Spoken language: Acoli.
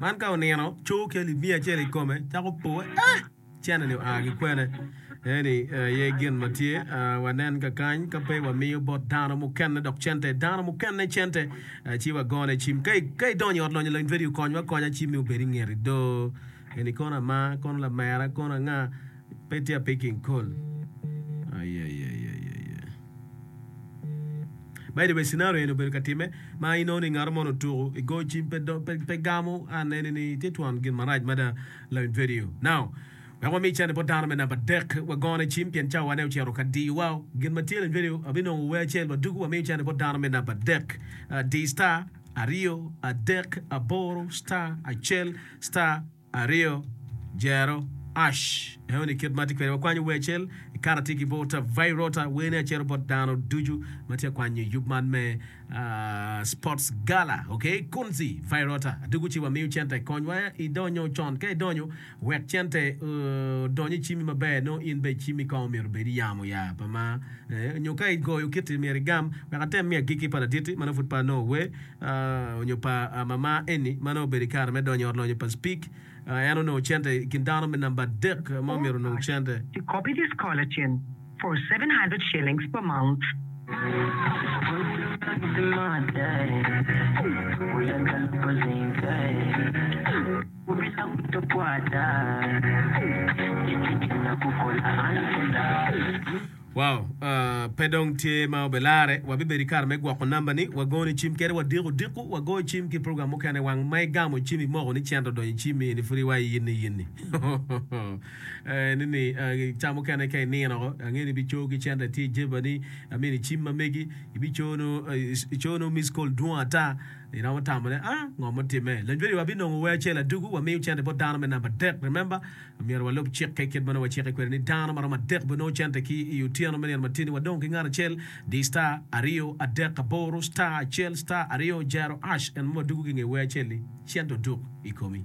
Man ka onino, cowo ki alip miya acel i kome, cako powe, Ah! Cene-ni oa ki kwene? Eni aye gin ma tye. Wanen kakany, ka pe wamiyo bot dano mukene dok cente, dano mukene cente, ci wagone cim. Ka idonyo i ot lonyo lony vedio, konywa akonya cimmi obed i ngeti do. Eni kono ama, kono lamera, kono anga? Pe tye apiki nkol. By the way scenario eni obedo ka time ma inongo ni ngato moni otuku i go cim pe do pe pe gamo an eni ni tye twon gin marac mada lawin vedio now wek wami cene bot dano me namba dek wagone cim pien cawa ne ocito ka diyo wa gin ma tye lawin vedio abinongo wer acel waduku wamiyo cene bot dano me namba dek uh, di star aryo adek aboro star acel star Aryo, Jero, Ash. Eno ni kit ma atye kwede, wakwanyo wer acel, ikato atye ki Volta Vairota, werni acero bot dano ducu ma tye ka kwanyo yub man me ah, Sports Gala, ok? Kunzi Vairota, adwogo ci wamiyo cente, konywa idonyo con, ka idonyo wek cente eh, odony icimi maber, nongo in bene icimi kong myero obed iyamo ya, pa ma eh, nyo ka igoyo kiti myero igam, wek atem miyo agikki pa laditti ma nongo pud pe anongo wer. onyo pa mama eni ma nongo obedo ikare me donyo i ot lonyo pa Speke, en onongo cente ikin dano me namba adek ma omyero onong cente. To copy this collagen for seven hundred shillings per month. Wow! Pe dong tye ma obilarre. Wabibedo i kare me gwoko namba ni wagoni cim kede wadiko diko, wagoyo cim ki program mukene wang ma igamo cim imoko ni cento odonyo i cim mi ni pud iwayo yinni yinni. Nini ca mukene ka inino ko ange ni ibico ki cento itye i jeba ni amini cim ma megi ibico no ico no miss call dwong ata iromo tamo ne ah ngo mutime. Lanywa ni wabinongo wer acel adugu wamiyo cente bot dano me namba adek remember. Myero walub cikke kit ma nongo wacikke kwede ni dano ma romo adek bene nongo cente ki i otyeno me nino ma tye-ni. Wadong ki ngat acel, di star, aryo, adek, aboro, star, acel, star, aryo, jero, ash, en ma wadwogo ki i nge wer acel-li, cente oduk i komi.